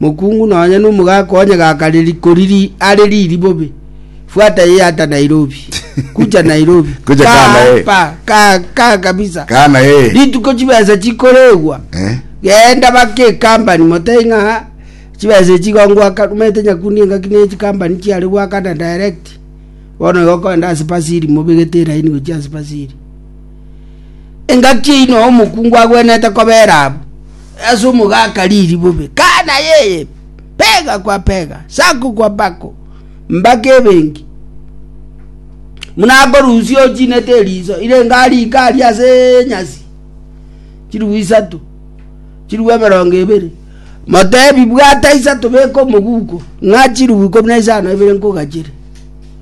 Mokungu nonya nomogaka onye gakareri koriri are riri bobe. Fuata eye ata Nairobi. Kucha Nairobi. Kucha kaa Kaa naye. hapa. Kaa kaa kabisa. Kaa naye. Rituko chibesa chikoregwa. Eh. Genda bake ekambani motei ng'a chibesa echi igo ngoaka rumete nyakundi engaki ne chikambani chiare goakana direct. Bono igo okoenda ase pasiri mobegete eraini gochia ase pasiri. Engaki eyio noo omokungu agwenerete kobera abwo, ase omogaka riri bobe, kana yeye, pega kwa pega, sako kwa bako, mbaka ebenki. Muna akorusia ochinete eriso, irenge arike aria ase enyasi, chirigwe isato, chirigwe emerongo ebere, motebi bwata isato beka omoguko, ng'a chirigwe ikomi na isano ebere nkogachere.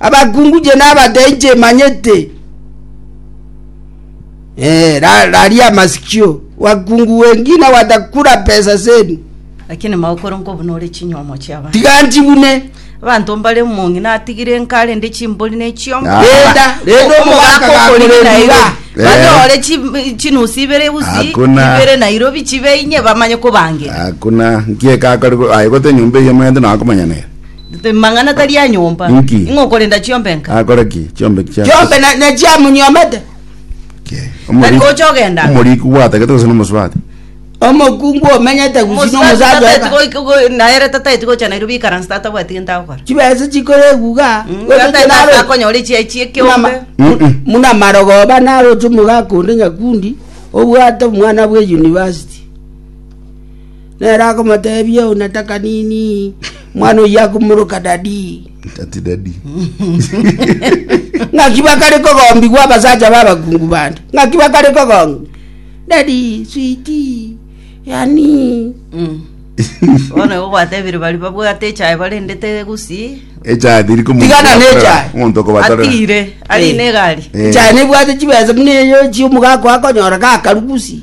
abakungu inche nabatee inche manyete Eh, ra- raria amasikio wakungu wengine watakula pesa zenu lakini maokoro nkobuna ore chinyomo chiaba tiga nchibune abanto mbare omong'i natigire nkare nde chimbori ne chiombo Ah. renda renda omogaka gakorerira Eh. banyore chi- chinusi ibere usi Hakuna. ibere nairobi chibeinye bamanye kobangira hakuna nkiekakore aye gote nyomba eye manyete nakomanyanera Rimang'ana tari a nyomba. Inki? Ing'o okorenda chiombe nka? Akore ki? Chiombe chia Chiombe na- nachiamunyomete. Omoriki- gocha ogendaga. Omoriki gwatagete gose nomosubati? Omokungu omenyete gusina Omosacha omosacha tataeti oka. goika- go- naere tataeti gocha Nairobi ikaranse tatabwati gento agokora. Chibesa chikore eguga. Mm, Gocha tataeti chenaro- ase akonyora echiayi chia ekeombe. Mama- Mm-mm. muna marogoba naroche omogaka onde nyakundi obwate omwana bwe university Nere akomoteebia, Euna takanini, omwana oyio akomoroka Dadi. Ng'aki bakare kogombigwa abasacha b'abakungu bande? Ng'aki bakare kogong'ia Dadi, switi, yani? Bono igo gwatebire bari babwate echae barendete gusii, Echae teri komonto Tigana okobatera- n'echae. omonto okobaterera. atire, arine egari. Eh. Echae nebwate chibesa buna eyo echio omogaka oye akonyora gakaru gusii.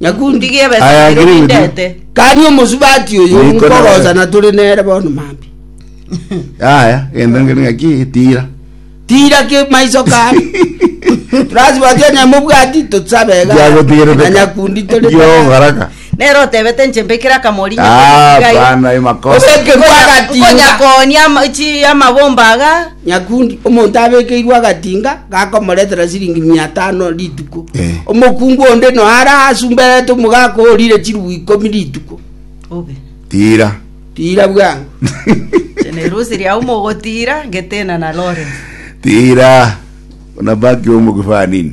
Nyakundi gi'ebesa Aya nero agiri gutio. nindete. Kani omosubati oyo Niko nkogosa nabere. na tore nere bono mambia. Yaya, genda ngere ng'aki tira. Tira ki maiso kare. Turasubati onye mobwati tosabe iga. Giagotigerete Na ka. Nyakundi tore Yo, tata. baraka. Nere otebete inche mbekire akamori Ah, nyakundi iga iga. bana, emakosa. Obeke bwagatinga. Nkonyakonia ama- chi amabomba aga. Nyakundi, omonto abekeirwe agatinga gakomoretera chiringi mia tano rituko. Omokungu onde noyo are asumberete omogaka orire chirubu ikomi rituko. Tiira. Tiira bwango. Inche nerusi riao mogotiira ngetena na Lawrence. Tiira. Unabaki umu kifaa nini?